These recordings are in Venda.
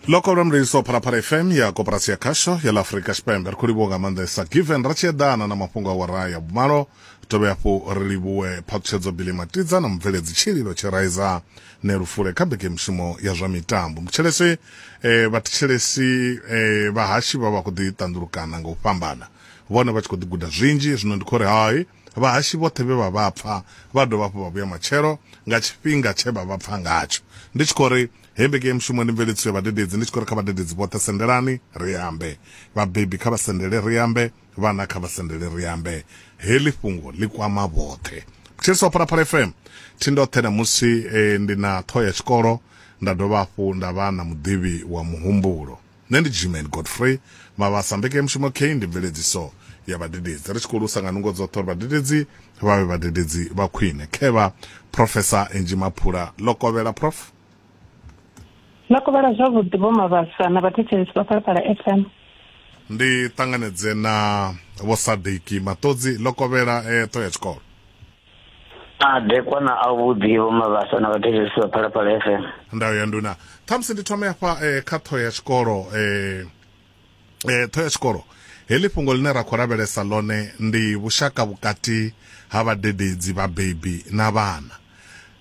loko lwa mliliso phalaphala fm ya koporasi ya khasho ya la afurika tshipembe ri khou livhuwa nga maanḓesa given ra tshi eḓana na mafhungo a wara ya vhumalo dovhe hafhu ri livhuwe phaṱhutshedzo bili matidza na mubveledzi tshililo tshiraiza ne lufule kha mbekemushumo ya zwa mitambo mutshelesi eh, vhathetshelesi eh, vhahashi vha vha khou ḓi ṱanḓulukana nga u fhambana vhone vha tshi khou ḓi guda zwinzhi zwino ndi khou ri hai Vhahashi vhoṱhe vhe vha vha pfa vha dovha hafhu vha vhuya matshelo nga tshifhinga tshe vha vha pfa ngatsho. Ndi tshi khou ri hei vhege ya mushumo ndi mveledziso ya vhadededzi, ndi tshi khou ri kha vhadededzi vhoṱhe sendelani ri ambe. Vhabebi kha vha sendele ri ambe, vhana kha vha sendele ri ambe. Heḽi fhungo ḽi kwama vhoṱhe. Thetshelesa wa Phalaphala FM, thi ndoṱhe ṋamusi ndi na ṱhoho ya tshikolo nda dovha hafhu nda vha na muḓivhi wa muhumbulo. Nṋe ndi Gman Godfrey Mabasa, mbekanyamushumo kheyi ndi mveledziso ya vhadededzi. Ri tshi khou lusa nga nungo dzoṱhe uri vhadededzi vha vhe vhadededzi vha khwine. Khevha, Phrofesa Angie Maphula, Lokovhela, Prof. Lokovhela, Zwavhuḓi Vho Mabasa na vhathetshelesi vha Phalaphala FM. Ndi ṱanganedze na Vho Sadiki Maṱodzi, Lokovhela, Eṱo ya tshikolo. madekwa na avhuḓi vho mavhasa na vhathetshelesi vha phalaphala fm ndayo ya nduna khamusi ndi thome hafha eh, kha ṱhoho ya tshikolo eh, eh, ṱhoho ya tshikolo heḽi fhungo ḽine ra khou lavhelesa ḽone ndi vhushaka vhukati ha vhadededzi vhabebi na vhana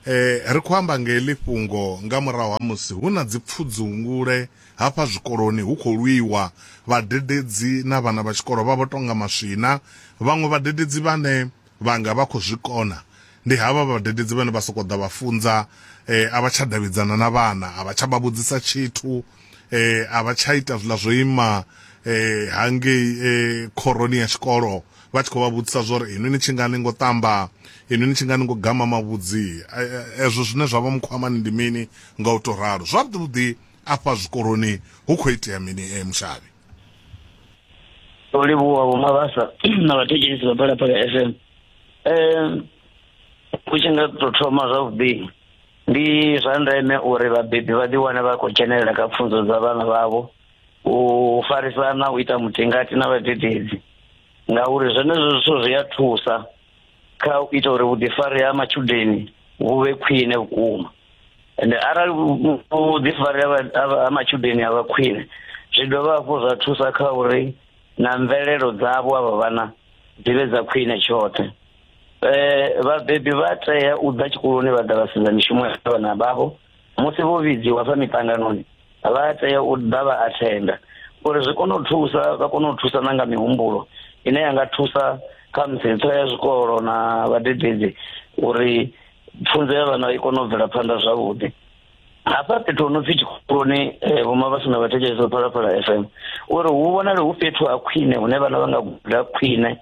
eh, ri khou amba nga heḽi fhungo nga murahu ha musi hu na dzipfudzungule hafha zwikoloni hu khou lwiwa vhadededzi na vhana vha tshikolo vha vho tonga maswina vhaṅwe vhadededzi vhane Vhanga vha khou zwi kona. Ndi havha vhadededzi vhane vha sokou ḓa vha funza, eh, a vha tsha davhidzana na vhana, a vha tsha vha vhudzisa tshithu, eh, a vha tsha ita zwiḽa zwo ima eh, hangei eh, khoroni ya tshikolo vha tshi khou vha vhudzisa zwa uri inwi ni tshi nga ni ngo ṱamba, inwi ni tshi nga ni ngo gama mavhudzi, eh, eh, ezwo zwine zwa vha mukhwamani ndi mini, nga u tou ralo. Zwavhuḓi-vhuḓi afha zwikoloni hu khou itea mini, eh, Mushavhi? ndo livhuwa vho mavhasa na vhathetshelisi vha phalaphala f m um u tshi nga to thoma zwavhuḓi ndi zwa ndeme uri vhabebi vha ḓiwane vha khou dzhenelela kha pfunzo dza vhana vhavho u farisana u ita mutingati na vhadededzi ngauri zwenezwo zwithu zwi a thusa kha u ita uri vhuḓifari ha matshudeni vhu vhe khwine vhukuma ende arali vhuḓifari ha matshudeni a vha khwine zwi dovha hafhu zwa thusa kha uri na mvelelo dzavho avha vhana dzi vhe dza khwine tshoṱhe um vhabebi vha tea u ḓa tshikoloni vha ḓa vha sedza mishumo ya vhana vhavho musi vho vhidziwa fha miṱanganoni vha tea u ḓa vha athenda uri zwi kone u thusa vha kone u thusa na nga mihumbulo ine ya nga thusa kha musi ntho ya zwikolo na vhadededzi uri pfunzo ya vhana i kone u bvela phanḓa zwavhuḓi hafha fhethu ho no pfi tshikoloni eh, vhoma vha sina vhathetshelesi vha phalaphala f m uri hu vhonale hu fhethu ha khwine hune vhana vha nga guda khwine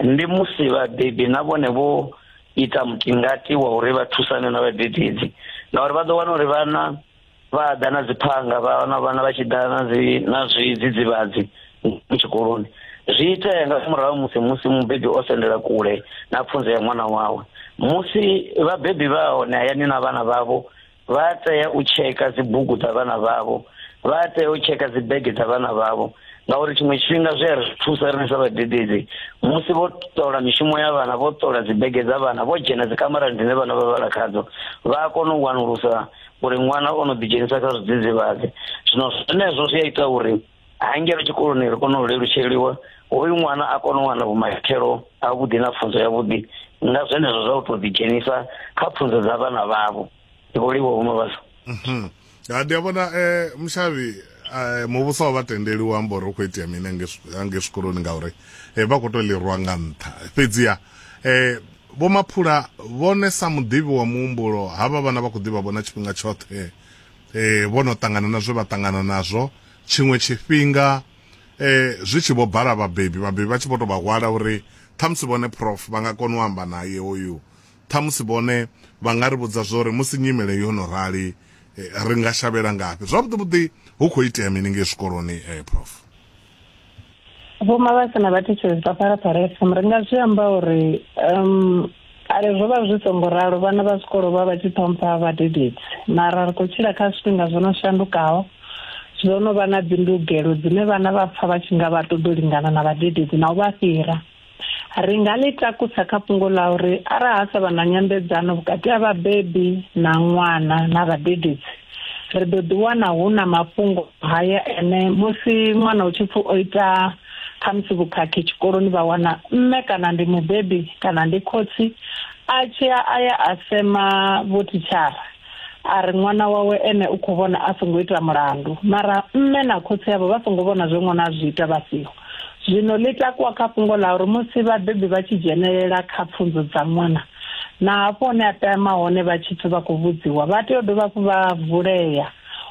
ndi musi vhabebi na vhone vho ita mutingati wa uri vha thusane na vhadededzi ngauri vha ḓo wana uri vhana vha ḓa na dziphanga vha wana vhana vha tshi ḓa na dzi na zwidzidzivhadzi tshikoloni zwi itea nga murahu musi musi mubebi o sendela kule na pfunzo ya ṅwana wawe musi vhabebi vha hone hayani na vhana vhavho vha a tea u tsheka dzibugu dza vhana vhavho vha a tea u tsheka dzibege dza vhana vhavho ngauri tshiṅwe tshifhinga zwi a ri thusa riṋe sa vhadededzi musi vho ṱola mishumo ya vhana vho ṱola dzibege dza vhana vho dzhena dzikamarani dzine vhana vha vhala khadzo vha a kona u wanulusa uri ṅwana o no ḓidzhenisa kha zwidzidzivhadzi zwino zwenezwo zwi a ita uri ha ngeno tshikoloni ri kone u lelutsheliwa hoyu ṅwana a kone u wana vhumatshelo a vhuḓi na pfunzo ya vhuḓi nga zwenezwo zwa u to ḓi dzhenisa kha pfunzo dza vhana vhavho ndi vho livho hume vhasa mhm. ha ndi a vhona um eh, mushavhi um eh, muvhuso wa vha tendeli u amba uri u khou itea mini ange zwikoloni ngauri um eh, vha khou to lirwa nga nṱha fhedziha um vho maphula vhone sa muḓivhi wa muhumbulo havha vhana vha khou ḓivha vhona tshifhinga tshoṱhe eh vho no ṱangana na zwe vha ṱangana nazwo tshiṅwe tshifhinga eh zwi tshi vho bala vhabebi vhabebi vha tshi vho to vha hwala uri ṱhamusi vhone prof vha nga kona u amba naye hoyu ṱhamusi vhone vha nga ri vhudza zwo uri musi nyimele yo no rali eh, ri nga shavhela ngafhi zwavhuḓi vhuḓi hu khou itea mini ngei zwikoloni eh prof Vho Mabasa na vhathetshelesi vha Phalaphala FM ri nga zwi amba uri um kale zwo vha zwi songo ralo vhana vha zwikolo vha vha tshi ṱhompha vhadededzi mara ri khou tshila kha zwifhinga zwo no shandukaho zwo no vha na dzindugelo dzine vhana vha pfha vha tshi nga vha ṱoḓa u lingana na vhadededzi na u vha fhira Ri nga ḽi takusa kha fhungo ḽa uri arali ha sa vha na nyambedzano vhukati ha vhabebi na ṅwana na vhadededzi, ri ḓo ḓiwana hu na mafhungo haya ene, Musi ṅwana hu tshi pfi o ita khamusi vhukhakhi tshikoloni vha wana mme kana ndi mubebi kana ndi khotsi a tshi ya a ya a sema vhothitshara, a ri ṅwana wawe ene u khou vhona a songo ita mulandu mara mme na khotsi avho vha songo vhona zwe ṅwana a zwi ita vha siho zwino ḽi takuwa kha fhungo ḽa uri musi vhabebi vha tshi dzhenelela kha pfunzo dza ṅwana na hafho hune a tama hone vha tshi pfhi vha khou vhudziwa vha tea u dovha hafhu vha vulea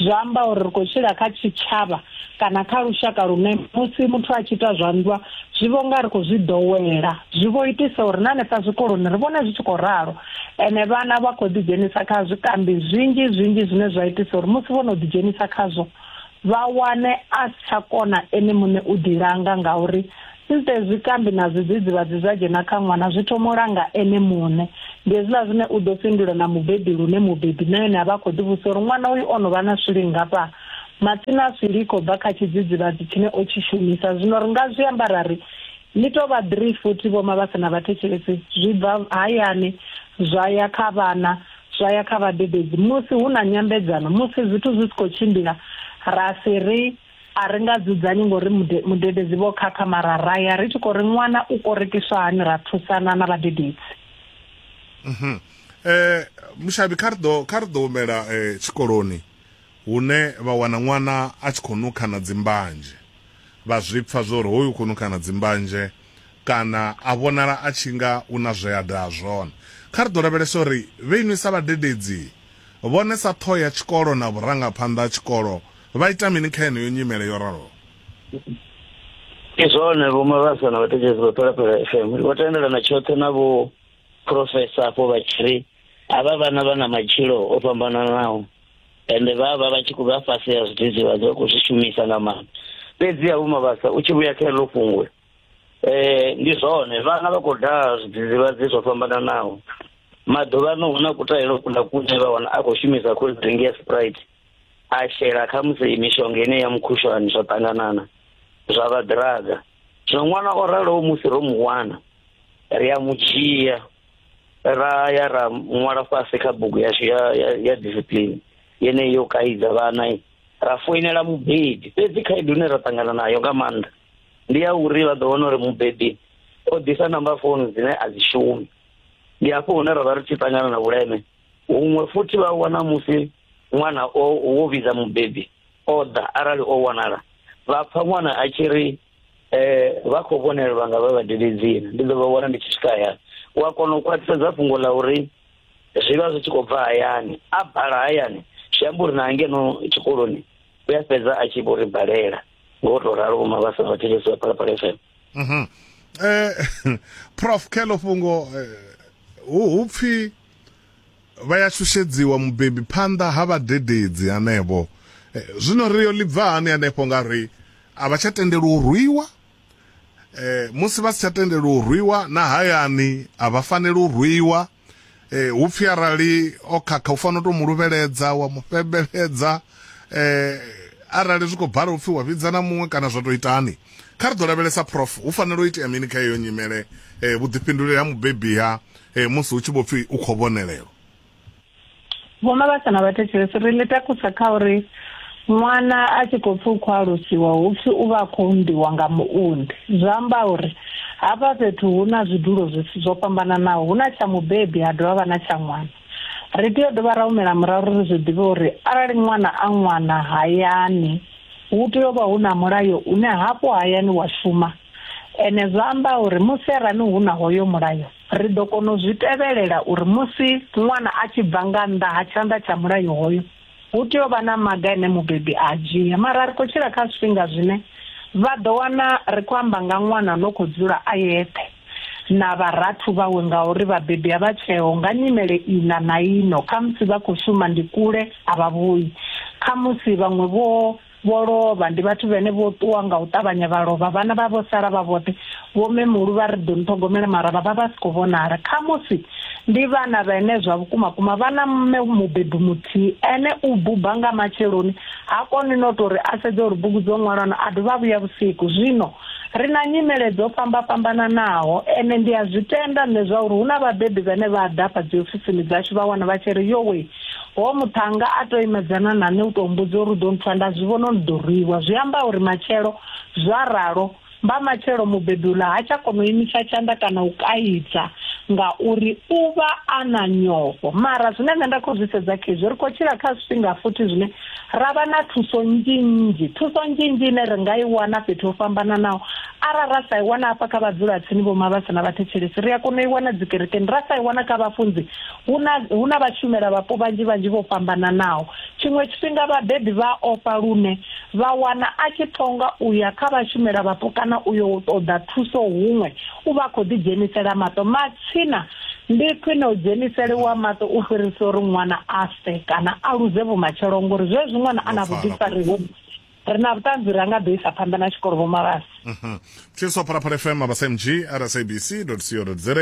Zwi amba uri ri khou tshila kha tshitshavha kana kha lushaka lune musi muthu a tshi ita zwa nndwa zwi vho nga ri khou zwi ḓowela zwi vho itisa uri na hanefha zwikoloni ri vhone zwi tshi khou ralo ene vhana vha khou ḓidzhenisa kha zwikambi zwinzhi zwinzhi zwine zwa itisa uri musi vho no ḓidzhenisa khazwo vha wane a si tsha kona ene muṋe u ḓilanga ngauri Instead zwikambi na zwidzidzivhadzi zwa dzhena kha ṅwana zwi thoma u langa ene muṋe. Ndi hezwiḽa zwine u ḓo fhindula na mubebi lune mubebi na ene a vha a khou ḓivhudzisa uri ṅwana uyu o no vha na swili nngafha. Matsina a swili i khou bva kha tshidzidzivhadzi tshine o tshi shumisa. Zwino ri nga zwi amba ra ri, Ni tou vha ḓirii futhi vhoma vha si na vhathetshelesi. Zwi bva hayani zwa ya kha vhana zwa ya kha vhadededzi. Musi hu na nyambedzano, musi zwithu zwi si khou tshimbila, ra si ri, A ri nga dzudzanyi ngo ri mudededzi vho khakha mara ra ya ri tshi khou ri ṅwana u korekiswa hani ra thusana na vhadededzi. Mhm. Eh, Mushavhi kha ri ḓo kha ri ḓo humela eh, tshikoloni hune vha wana ṅwana a tshi khou nukha na dzimbanzhe. Vha zwi pfa zwo ri hoyu u khou nukha na dzimbanzhe kana a vhonala a tshi nga u na zwe a daha zwone. Kha ri ḓo lavhelesa uri vhe inwi sa vhadededzi vhone sa ṱhoho ya tshikolo na vhurangaphanḓa ha tshikolo Vha ita mini kha yeneyo nyimele yo raloho? Ndi zwone Vho Mabasa na vhatetshedzi vha Phalaphala FM vho tendelana tshoṱhe na vho profesa afho vha tshi ri havha vhana vha na matshilo o fhambananaho ende vha vha vha tshi khou vha fhasi ya zwidzidzivhadzi vha khou zwi shumisa nga maanḓa fhedzi ha vhuma vhasa u tshi vhuya kha eḽo fhungo um eh, ndi zwone vhana vha khou daha zwidzidzivhadzi zwo fhambananaho maḓuvhano hu na kutahelo kula kune vha wana a khou shumisa cold drink ya sprite a shela khamusi mishonga ine ya mukhushwani zwa ṱanganana zwa vha ḓiraga zwino ṅwana o raloho musi ro mu wana ri a mu dzhia ra ya ra ṅwala fhasi kha bugu yashu ya ya, ya discipline yeneyi yo kaidza vhana ra foinela mubebi fhedzi khaedu ine ra ṱangana nayo nga maanḓa ndi ya uri vha ḓo wana uri mubebi o ḓisa namba founu dzine a dzi shumi ndi hafho hune ra vha ri tshi ṱangana na vhuleme huṅwe futhi vha wana musi ṅwana o wo vhidza mubebi o ḓa arali o wanala vha pfa ṅwana a tshi ri um vha khou vhonelelwa nga vha vhadede dzina ndi ḓo vha wana ndi tshi swika hayani u a kona u khwaṱhisedza fhungo ḽa uri zwi vha zwi tshi khou bva hayani a bala hayani zwi amba uri na ngeno tshikoloni u a fhedza a tshi vho ri balela ngo to ralo vhoma vha sa vhathetshelesi vha phalaphala fm um prof kheḽo fhungo eh, hu pfhi Vha ya shushedziwa mubebi phanḓa ha vhadededzi hanevho. Zwino ri yo ḽi bva hani hanefho nga ri a vha tsha tendelwa u rwiwa? Musi vha si tsha tendelwa u rwiwa, na hayani a vha faneli u rwiwa. Hu pfi arali o khakha u fanela u tou mu luvheledza, wa mu fhembeledza. Arali zwi khou bala u pfi wa vhidza na muṅwe kana zwa tou itani. Kha ri ḓo lavhelesa, Prof, hu fanela u itea mini kha heyo nyimele? Vhuḓifhinduleli ha mubebi ha e musi hu tshi vho pfi u khou vhonelelwa Vho Mabasa na vhathetshelesi ri ḽi takusa kha uri ṅwana a tshi khou pfi u khou alusiwa hu pfi u vha a khou unḓiwa nga muunḓi zwi amba uri hafha fhethu hu na zwidulo zwo fhambananaho hu na tsha mubebi ha dovha vha na tsha ṅwana ri tea u dovha ra humela murahu ri zwi ḓivhe uri arali ṅwana a ṅwana hayani hu tea u vha hu na mulayo une hafho hayani wa shuma Ene zwa amba uri musi arali hu na hoyo mulayo, ri ḓo kona u zwi tevhelela uri musi ṅwana a tshi bva nga nnḓa ha tshanḓa tsha mulayo hoyo, hu tea u vha na maga ane mubebi a a dzhia. Mara ri khou tshila kha zwifhinga zwine vha ḓo wana ri khou amba nga ṅwana no khou dzula a yeṱhe na vharathu vhawe ngauri vhabebi a vha tsheho nga nyimele iḽa na iḽo, khamusi vha khou shuma ndi kule a vha vhuyi, khamusi vhaṅwe vho vho lovha ndi vhathu vhene vho ṱuwa nga u ṱavhanya vha lovha vhana vha vho sala vha vhoṱhe vho memulu vha ri ḓo ni ṱhogomela mara vha vha vha si khou vhonala khamusi ndi vhana vhene zwa vhukuma kuma vha na mme mubebi muthihi ene u buba nga matsheloni ha koni no tou ri a sedze uri bugu dzo ṅwalwana a dovha vhuya vhusiku zwino ri na nyimele dzo fhamba fhambananaho ene ndi a zwi tenda nṋe zwa uri hu na vhabebi vhane vha ḓa fha dziofisini dzashu vha wana vha tshi ri yowe Hoyo muṱhannga a tou imedzana na nṋe u tou mbudza uri u ḓo nthusa, nda zwi vhona uri ndi ḓo rwiwa. Zwi amba uri matshelo. Zwa ralo, mbamatshelo mubebi uḽa ha tsha kona u imisa tshanḓa kana u kaidza ngauri u vha a na nyofho. Mara zwine nṋe nda khou zwi sedza khezwi, ri khou tshila kha zwifhinga futhi zwine ra vha na thuso nnzhi-nnzhi. Thuso nnzhi-nnzhi ine ri nga i wana fhethu ho fhambananaho. Arali ra sa i wana hafha kha vhadzulatsini, vhomavhasa na vhathetshelesi, ri a kona u i wana dzikerekeni, ra sa i wana kha vhafunzi, Hu na, hu na vhashumelavhapo vhanzhi vhanzhi vho fhambananaho. Tshiṅwe tshifhinga vhabebi vha a ofha lune vha wana a tshi ṱonga u ya kha vhashumelavhapo kana u yo ṱoḓa thuso huṅwe u vha a khou ḓidzhenisela maṱo. Matsina ndi khwine u dzheniseliwa maṱo u fhirisa uri ṅwana a fe kana a luze vhumatshelo ngori zwezwi ṅwana a na vhuḓifari hovhu ri na vhuṱanzi ri anga ḓo isa phanḓa na tshikolo vho mavhasi mhm. tshiswa phalaphala fm mabasa mg rsabc co za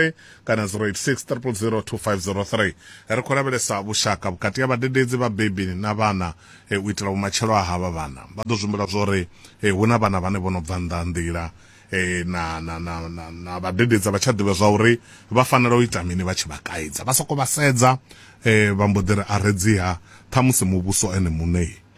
kana 086 0002503 ri khou lavhelesa vhushaka vhukati ha vhadededzi vhabebi na vhana eh, u itela vhumatshelo a havha vhana vha ḓo zwimbula zwo ri eh, hu na vhana vhane vho no bva nnḓa nḓila eh, na na na na na vhadededza vha tsha ḓivha zwa uri vha fanela u ita mini vha tshi vha kaidza vha soko vha sedza eh, vha mbo ḓi ri a redziha ṱhamusi muvhuso ene muṋei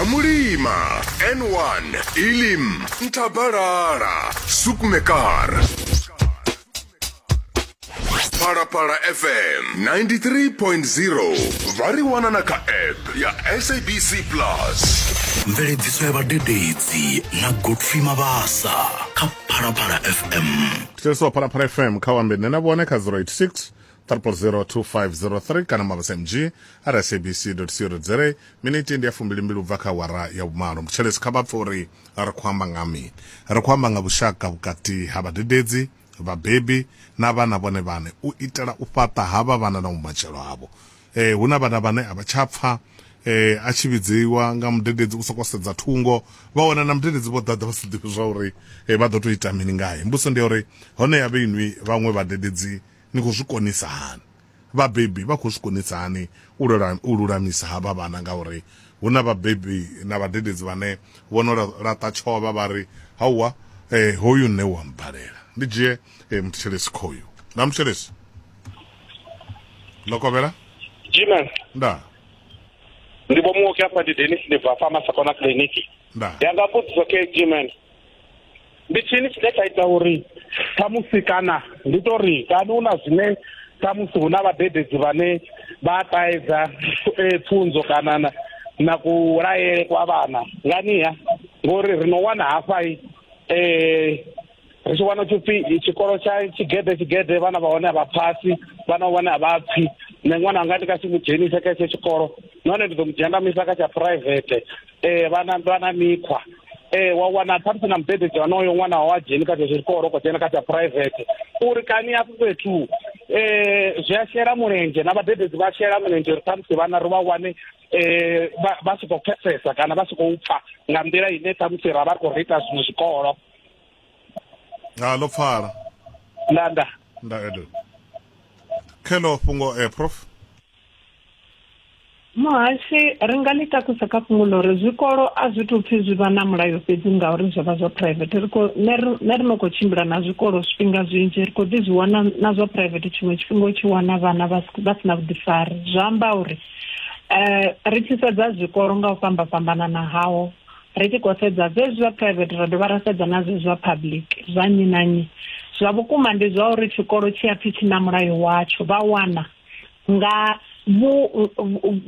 amulima n1 ilim ntabalala sukmekar phalaphala fm 93.0 vha ri wana na kha app ya sabc plus mveledziso ya vhadededzi na godfrey mabasa kha phalaphala fm thetshelesa phalaphala fm kha wambe nṋe na vhone kha 086 002503 kana mabasa mg ara sabc co za miniti ndi ya fumbilimbili u bva kha wara ya vhumalo mutshelesi kha vha pfe uri ri khou amba nga mini ri khou amba nga vhushaka vhukati ha vhadededzi vhabebi na vhana vhone vhane u itela u fhaṱa havha vhana na vhumatshelo havho eh, hu na vhana vhane a vha tsha pfa eh, a tshi vhidziwa nga mudededzi u sokou sedza thungo vha wana na mudededzi vho ḓaḓa vha si ḓivhi zwa uri eh, vha ḓo tou ita mini ngae mbuso ndi ya uri hone ya vhe inwi vhaṅwe vhadededzi Ni khou zwi konisa hani? Vhabebi vha khou zwi konisa hani u lulamisa havha vhana? Ngauri hu na vhabebi na vhadededzi vhane vho no laṱa tshovha vha ri, Hauwa, hoyu nṋe u a mmbalela. Ndi dzhie muthetshelesi khoyu. Ndaa, muthetshelesi. Lokovhela. Jiman. Ndaa. Ndi vho muoki afha ndi Dennis ndi bva afha Masakona Clinic. Ndaa. Ndi anga mbudziso khe Jiman. ndi tshini tshine tsha ita uri khamusi kana ndi to ri kana hu na zwine khamusi hu na vhadededzi vhane vha ṱaedza eh, pfunzo kana na na kulayele kwa vhana nganiha ngori ri no wana hafhai eh ri tshi wana tshipfi tshikolo tsha tshigede tshigede vhana vha hone a vha phasi vhana vhone a vha pfi nṋe ṅwana anga ndi ka si mu dzhenise kha etsho tshikolo nahone ndi ḓo mu dzhendamisa kha tsha private ee vha na vha na mikhwa ee wa wana khamusi na mubebeji wanoyo ṅwana wa dzheni kha zwezwo zwikolo ko dzhena kha tsha private uri kani hafho fhethu um zwi a shela mulenzhe na vhadededzi vha shela mulenzhe uri khamusi vhana ri vha wane eh vha si khou pfesesa kana vha si khou pfa nga nḓila ine ṱhamusi ra vha ri khou ri ita zwiṅwe zwikolo ha ḽo pfala nda nda nda edo khe ḽo fhungo eh prof muhashe ri nga ḽi takusa kha fhungo ḽo uri zwikolo a zwi tou pfhi zwi vha na mulayo fhedzi ngauri zwo vha zwa private ri khou ne ri no khou tshimbila na zwikolo zwifhinga zwinzhi ri khou ḓi zwi wana na zwa private tshiṅwe tshifhinga u tshi wana vhana vha si na vhuḓifari zwa amba uri um ri tshi sedza zwikolo nga u fhamba fhambanana hawo ri tshi khou sedza zwezwi zwa private ra dovha ra sedza na zwezwi zwa public zwa nnyi na nnyi zwa vhukuma ndi zwa uri tshikolo tshi a pfhi tshi na mulayo watsho vha wana nga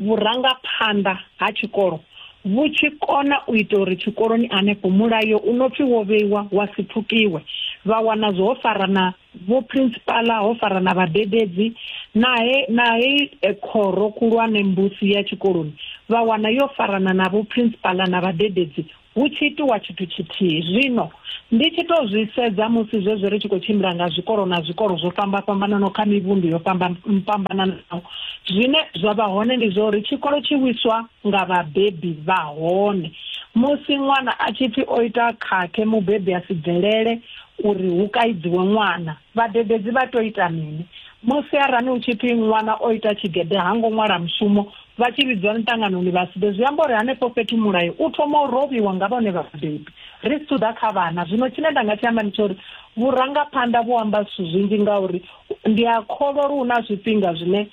vhurangaphanḓa ha tshikolo vhu tshi kona u ita uri tshikoloni hanefho mulayo u no pfi wo vheiwa wa si pfukiwe vha wana zwo ho fara na vho principala ho fara na vhadededzi nahe nahe eh, khoro khulwane mbusi ya tshikoloni vha wana yo farana na vho principala na vhadededzi Hu tshi itiwa tshithu tshithihi. Zwino, ndi tshi tou zwi sedza musi zwezwi ri tshi khou tshimbila nga zwikolo na zwikolo zwo fhamba-fhambananaho kha mivhundu yo fhamba-fhambananaho, zwine zwa vha hone ndi zwa uri tshikolo tshi wiswa nga vhabebi vha hone. Musi ṅwana a tshi pfi o ita khakhe, mubebi a si bvelele uri hu kaidziwe ṅwana. Vhadededzi vha tou ita mini musi arali hu tshi pfi ṅwana o ita tshigede ha ngo ṅwala mushumo vha tshi vhidzwa miṱanganoni vha si ḓe? Zwi amba uri henefho fhethu mulayo u thoma u rovhiwa nga vhone vhabebi. Ri si thu ḓa kha vhana zwino, tshine nda nga tshi amba ndi tsha uri vhurangaphanḓa vhu amba zwithu zwinzhi ngauri ndi a kholwa uri hu na zwifhinga zwine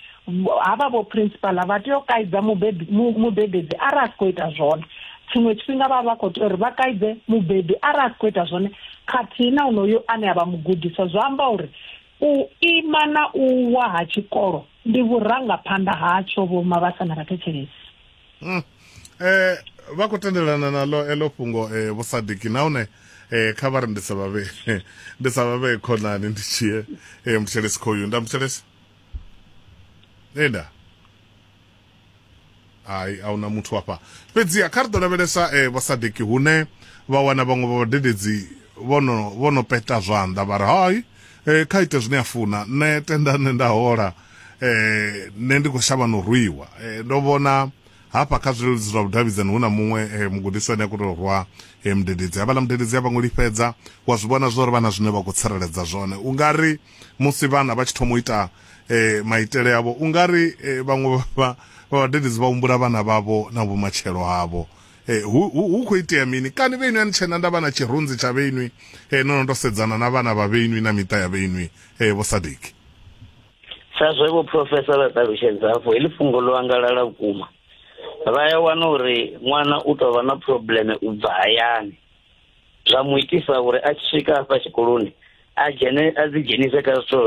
havha vho principala vha tea u kaidza mubebedzi arali a si khou ita zwone tshiṅwe tshifhinga vha vha khou tea uri vha kaidze mubebi arali a si khou ita zwone khathihi na unoyo ane a vha mugudiswa zwa amba uri u ima na u wa ha tshikolo ndi vhurangaphanḓa hatsho vho mavhasa na vhathetshelesi hmm. eh, vha khou tendelana naḽo eḽo fhungo um eh, vhusadiki nahone eh kha vha ri ndi sa vhavhe ndi sa vhavhe khonani ndi tshie eh mutshelesi khoyu nda mutshelesi enda hai a huna muthu afha fhedziha kha ri ḓo lavhelesa um vhasadeki hune vha wana vhaṅwe vha vhadededzi vhono vhono peta zwanḓa vha ri hai um kha ite zwine a funa nṋe tenda nṋe nda hola um nṋe ndi khou shavha no rwiwa um ndo vhona hafha kha zwileludzi zwa vhudavhidzani hu na muṅwe mugudiswa ane a khou tou rwa mudededzi havhaḽa mudededzi a vha ngo lifhedza wa zwi vhona zwo ri vha na zwine vha khou tsireledza zwone u nga ri musi vhana vha tshi thoma u ita eh, maitele avho u nga ri eh, vhaṅwe vha- vha vha vhadededzi vha humbula vhana vhavho na vhumatshelo havho eh, hu hu- hu khou itea mini kani vheinwi ani tshena nda vha na tshirunzi tsha vheinwi eh, no no ndo sedzana na vhana vha vheinwi na miṱa ya vheinwi eh, vho sadiki sa zwe vho profesa vha ṱalutshedza afho heḽi fhungo ḽo angalala vhukuma vha ya wana uri ṅwana u tou vha na probleme u bva hayani zwa mu itisa uri a tshi swika hafha tshikoloni a dzhene a dzi dzhenise kha zwithu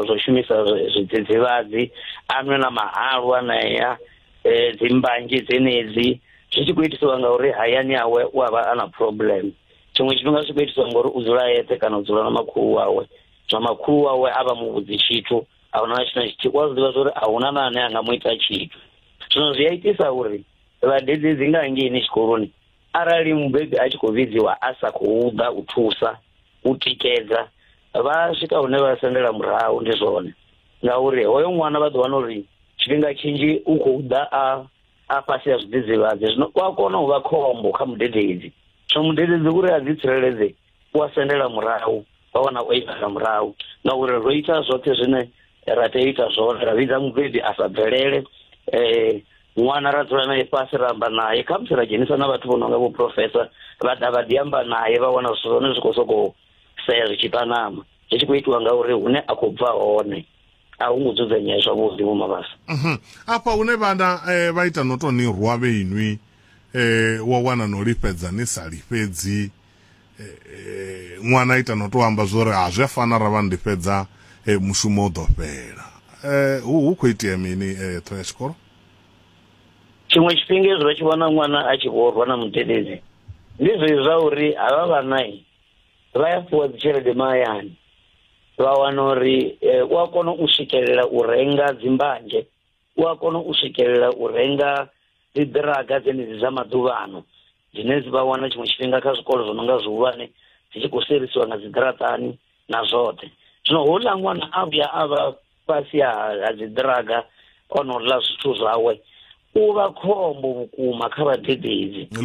zwo shumisa zwidzidzivhadzi a nwe na mahalu anea eh, dzi mbanzhi dzenedzi zwi tshi khou itisiwa ngauri hayani awe u a vha a na problem tshiṅwe tshifhinga zwi khou itisiwa ngauri u dzula yeṱhe kana u dzula na makhulu wawe zwa makhulu wawe a vha mu vhudzi tshithu a huna na tshithu na tshithihi u a zwi ḓivha zwa uri a huna na ane a nga mu ita tshithu zwino zwi a itisa uri vhadededzi nga hangeini tshikoloni Arali mubebi a tshi khou vhidziwa a sa khou ḓa u thusa u tikedza vha swika hune vha sendela murahu ndi zwone ngauri hoyo ṅwana vha ḓo wana uri tshifhinga tshinzhi u khou ḓa a a fhasi ya zwidzidzivhadzi zwino u a kona u vha khombo kha mudededzi zwino mudededzi uri a ḓi tsireledze u a sendela murahu vha wana o imela murahu ngauri ro ita zwoṱhe zwine ra tea ita zwone ra vhidza mubebi a sa bvelele um ṅwana ra dzula naye fhasi ra amba naye kha musi ra dzhenisa na vhathu vho no nga vho professor vha ḓa vha ḓi amba naye vha wana zwithu zwone zwi khou sokou sea zwi tshi panama zwi tshi khou itiwa ngauri hune a khou bva hone a hu ngo dzudzanyea zwavhuḓi vho mabasa mhm. afha hune vhana eh, vha ita no tou ni rwa vhe inwi eh, wa wana no lifhedza ni sa lifhedzi eh, ṅwana ita no tou amba zwo ri ha zwi a fana ra vha ndifhedza mushumo u ḓo fhela hu khou itea mini ṱho ya tshikolo tshiṅwe tshifhinga ezwi vha tshi vhona ṅwana a tshi vho rwa na mudededzi ndi zwezwi zwa uri havha vhanai vha ya fhiwa dzitshelede mahayani vha wana uri eh, u a kona u swikelela u renga dzimbanzhe u a kona u swikelela u renga dzi ḓiraga dzenedzi dza maḓuvhano dzine dzi vha wana tshiṅwe tshifhinga kha zwikolo zwo no nga zwihulwane dzi tshi khou serisiwa nga dziḓiraṱani na zwoṱhe zwino houḽa ṅwana a vhuya a vha fhasi ha ha dziḓiraga o no ḽa zwithu zwawe u vha khombo vhukuma kha vhadededzi ndi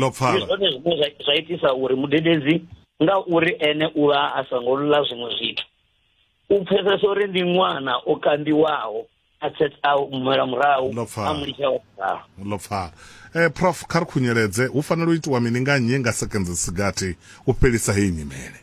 zwone zwine zwa itisa uri mudededzi nga uri ene u vha a songo ḽa zwiṅwe zwithu u pfesesa uri ndi ṅwana o kambiwaho a tsetsa mela murahu a mu litsha wa murahu ḽo pfala eh prof kha ri khunyeledze hu fanela u itiwa mini nga nnyi nga sekenze sigathi u fhelisa heyi nyimele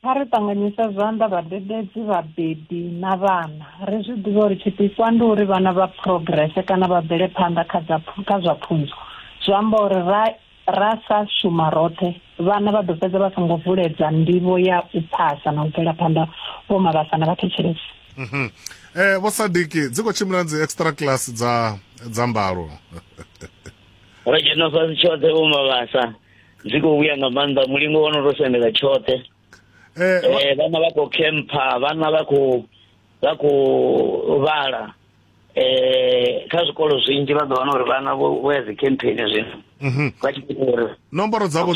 Kha ri ṱanganyise zwanḓa vhadededzi, vhabebi na vhana. Ri zwi ḓivhe uri tshipikwa ndi uri vhana vha phurogirese kana vha bvele phanḓa kha dza kha zwa pfunzo. Zwi amba uri ra ra sa shuma roṱhe, vhana vha ḓo fhedza vha songo vuledza ndivho ya u phasa na u bvela phanḓa, Vho Mabasa na vhathetshelesi. Mhm. Eh vho Sadiki dzi khou tshimbila dzi extra class dza dza mbalo. Ro dzhena fhasi tshoṱhe Vho Mabasa. zwi khou vhuya nga maanḓa mulingo wo no to sendela tshoṱhe eh, eh, vhana vha khou khempha vhana vha khou vha khou vhala eh kha zwikolo zwinzhi vha ḓo wana uri vhana vho ya dzikhempheni zwino mhm. vha tshi ita uri nomboro dzavho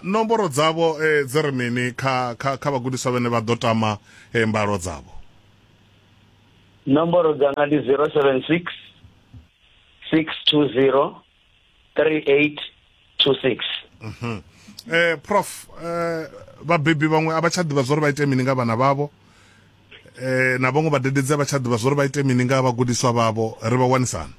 nomboro dzavho eh, dzi ri mini kha kha kha vhagudiswa vhene vha ḓo tama eh, mbalo dzavho nomboro dzanga ndi 076 620 3826 mhm. eh prof eh vhabebi vhaṅwe a vha tsha ḓivha zwo ri vha ite mini nga vhana vhavho eh na vhaṅwe vhadededzi a vha tsha ḓivha zwo ri vha ite mini nga vhagudiswa vhavho ri vha wanisana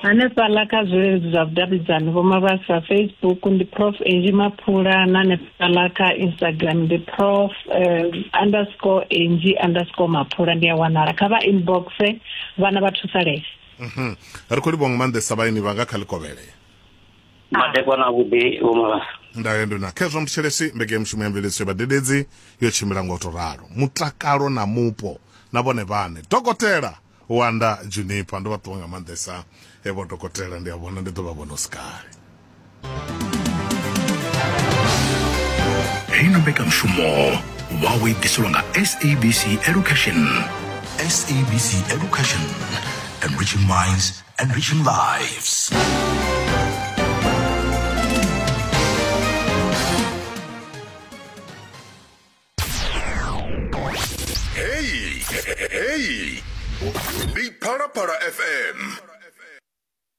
hanefhaḽa kha zwileludzi zwa vhudavhidzani vho mabasa facebook ndi prof angi maphula na hanefhaḽa kha instagram ndi prof um, underscore angi underscore maphula ndi a wanala kha vha inboxe vhana vha thusalese Mhm. ri khou livhuwa nga maanḓesa vhaeni vhanga kha likovhele madekwa na vhuḓi vhomavhasa ndayo ndi na khezwa muthetshelesi mbeke ya mushumo ya mveledziso ya vhadededzi yo tshimbila nga u to ralo mutakalo na mupo na vhone vhane dokotela wanda junipa ndo vha ṱuwa nga maanḓesa evo dokotela ndi a vhona ndi ḓo vha vhona u si kale heino mbekanyamushumo wawo i ḓiselwa nga sabc education sabc education enriching minds enriching lives heyi heyi ndi phalaphala fm